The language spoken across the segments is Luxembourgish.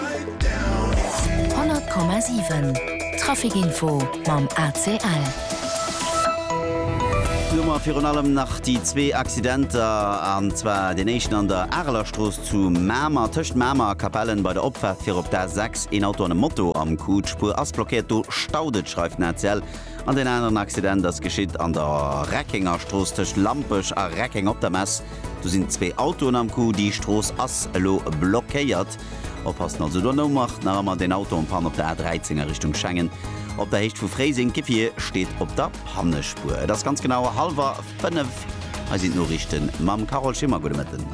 100,7 Traficinfo mam ACL. Hu mer virun allem nach déi zwee Accidenter, an zwar deen éischten an der Arelerstrooss zu Mamer, tëscht Mamer a Capellen bei der Opfaart fir op d'A6. Een Auto an e Moto am Coup, d'Spuer ass blockéiert, do staut et, schreift den ACL. An deen aneren Accident ass geschitt an der Reckengerstrooss tëscht Lampech a Reckeng op der Mess. Do sinn zwee Autoen am Coup, déi Strooss ass elo blockéiert. Oppassen also do no macht nach emmer deen Auto en panne op der A13 a Richtung Schengen op der Héicht vu Fréiseng. D'Gefier steet op der Pannespuer. Et ass ganz genau hallwer 5. Hei sinn d'Noriichten mam Carole Schimmer. Gudde Mëtten.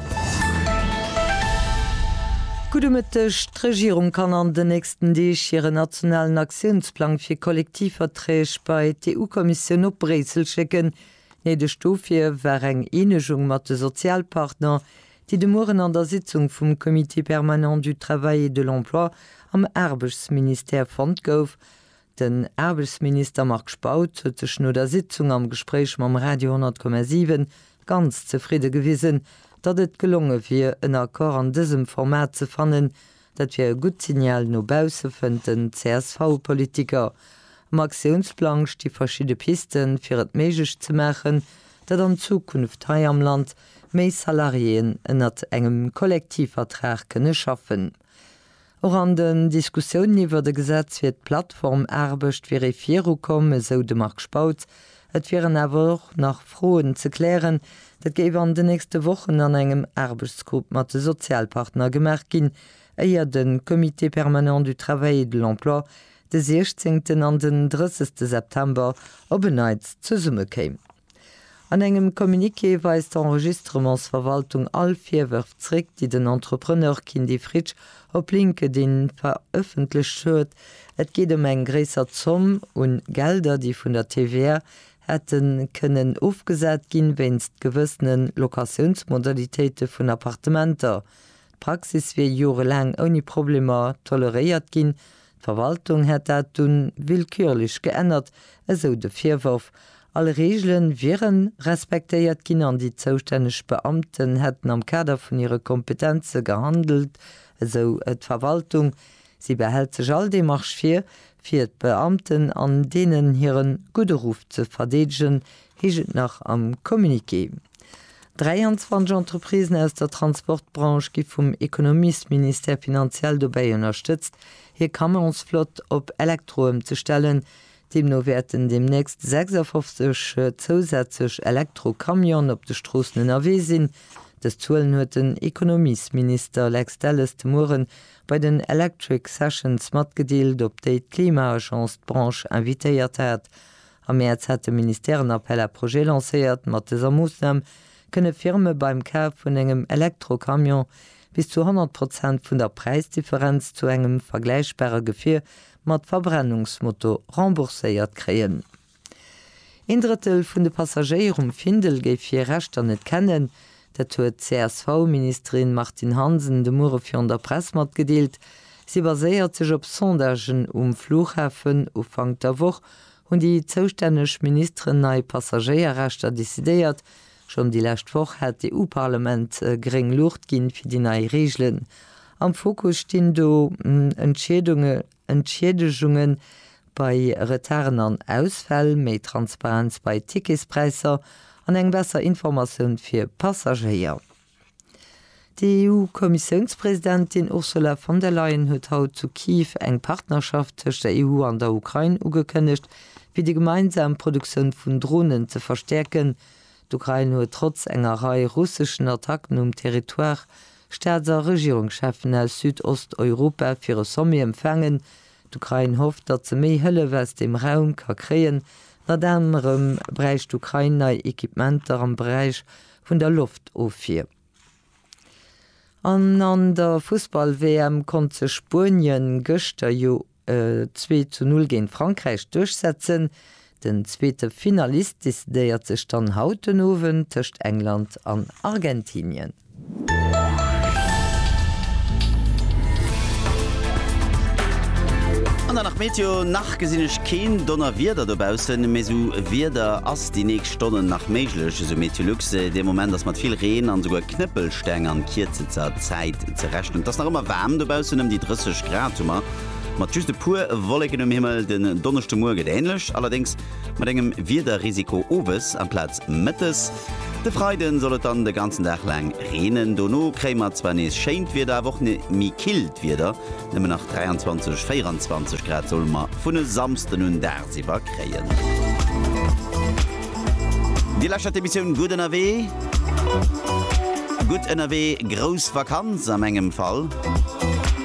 Gudde Mëtteg. D'Regierung kann an den nächsten Deeg hiren nationalen Aktiounsplang fir Kollektivverträg bei d'EU-Kommissioun op Bréissel schécken. Néideg dofir war eng Eenegung mat de Sozialpartner, déi de Mueren an der Sitzung vum Comité permanent du Travail et de l'Emploi am Aarbechtsministère fonnt gouf. Den Aarbechtsminister Marc Spautz huet sech no der Sitzung am Gespréich mam Radio 10,7 ganz zefridde gewisen, datt et gelonge wier, en Accord an dësem Format ze fannen, Dat wier e gutt Signal no bausse, fënnt den CSV-Politiker. Am Aktiounsplang sti verschidde Pisten, fir et méiglech ze maachen, datt an Zukunft hei am Land méi Salariéen ënnert engem Kollektivvertrag kënne schaffen. Och an den Diskussiounen iwwert e Gesetz fir d'Plattformaarbecht wier ee virukomm, esou de Marc Spautz, Et wieren awer och nach Froen ze klären. Dat géif an den nächste Wochen an engem Aarbechtsgrupp mat de Sozialpartner gemaach ginn, éier de Comité permanent du travail et de l'emploi de 16 an den 30 September op en Neits zesummekéim. An engem Communiqué weist d'Enregistrements-Verwaltung all Virwërf zréck, déi den Entrepreneur Kindy Fritsch op LinkedIn verëffentlecht huet, Et geet ëm eng gréisser Zomm un Gelder, déi vun der TVA hätte kënnen ofgesat ginn, wéinst gewëssene Locatiounsmodalitéite vun Appartementer. D'Praxis wier jorelaang ouni Problemer toleréiert ginn, d'Verwaltung hätt dat dunn willkürlech geännert, esou de Virworf. All Reegele wiere respektéiert ginn an déi zoustänneg Beamten hätten am Kader vun hire Kompetenze gehandelt, esou d'Verwaltung. Si behält sech all Demarche vir, fir d'Beamten an deenen hire gudde Ruff ze verdeedegen, heescht et nach am Communiqué. 23 Entreprisen aus der Transportbranche gi vum Ekonomiesministère finanziell dobäi ënnerstëtzt, hir Camionsflott op Elektro ëmzestellen, Deemno wäerten deemnächst 56 zousätzlech Elektro-Camionen op de Stroossen ënnerwee sinn. Dës Zuelen huet den Ekonomiesminister Lex Delles de Muere bei den Electric Sessions matgedeelt, op déi d'Klima-Agence d'Branche invitéiert hat. Am Mäerz hat de Ministère en Appel à projets lancéiert. Mat dëser Moossnam kënne Firme beim Kaf vun engem Elektro-Camion bis zu 100 Prozent vun der Präisdifferenz zu engem vergläichbare Gefier mat Verbrennungsmotor rembourséiert kréien. Een Drëttel vun de Passagéier um Findel géif hir Rechter net kennen. Dat huet d'CSV-Ministerin Martine Hansen de Muere virun der Press matgedeelt. Si baséiert sech op Sondagen um Flughafen. Ufank der Woch hunn déi zoustänneg Ministeren nei Passagéierrechter decidéiert, Schonn déi lescht Woch hat d'EU-Parlament gréng Luucht ginn, fir déi nei Reegelen. Am Fokus stinn do Entschiedegungen bei Retarden an Ausfäll, méi Transparenz bei Ticketspräisser an eng besser Informatioun fir Passagéier. D'EU-Kommissiounspresidentin Ursula von der Leyen huet haut zu Kiew eng Partnerschaft tëscht der EU an der Ukrain ugekënnegt, fir déi gemeinsam Produktioun vun Dronen ze verstäerken. D'Ukrain huet trotz enger Rei russeschen Attacken um Territoire Staats a Regierungscheffen aus Südosteuropa fir e Sommet empfaangen. D'Ukrain hofft, datt se méi Hëllef aus deem Raum ka kréien. Ënnert anerem bräicht d'Ukrain nei Equipementer am Beräich vun der Loft of vir. An an der Fussball-WM konnt sech Spuenien gëschter jo e zwee zu null géint Frankräich duerchsetzen. Den zweete Finalist decidéiert sech dann haut den Owend tëscht England an Argentinien. An dann nach d'Meteo, Nach gesinn ech keen Donnerwieder dobaussen, mee sou Wieder ass. Déi nächst Stonnen nach méiglech, esou Meteolux. De Moment ass mat vill Reen an esouguer Knëppelsteng an kierzester Zäit ze rechnen. Et ass nach ëmmer waarm dobaussen, ëm déi 30 Grad hu mer, mat just e puer Wolleken um Himmel. Den Donneschdemouer gëtt änlech, allerdéngs mat engem Wiederrisiko owes amplaz mëttes. De Freide soll et dann de ganzen Dag laang reenen, dono kréie mer zwar nees schéint Wieder, awer och méi killt Wieder. Nëmmen nach 23, 24 Grad solle mer vun e Samsden un dagsiwwer kréien. Dir lauschtert d'Emissioun Gutt ënnerwee. Gutt ënnerwee, grouss Vakanz a mengem Fall.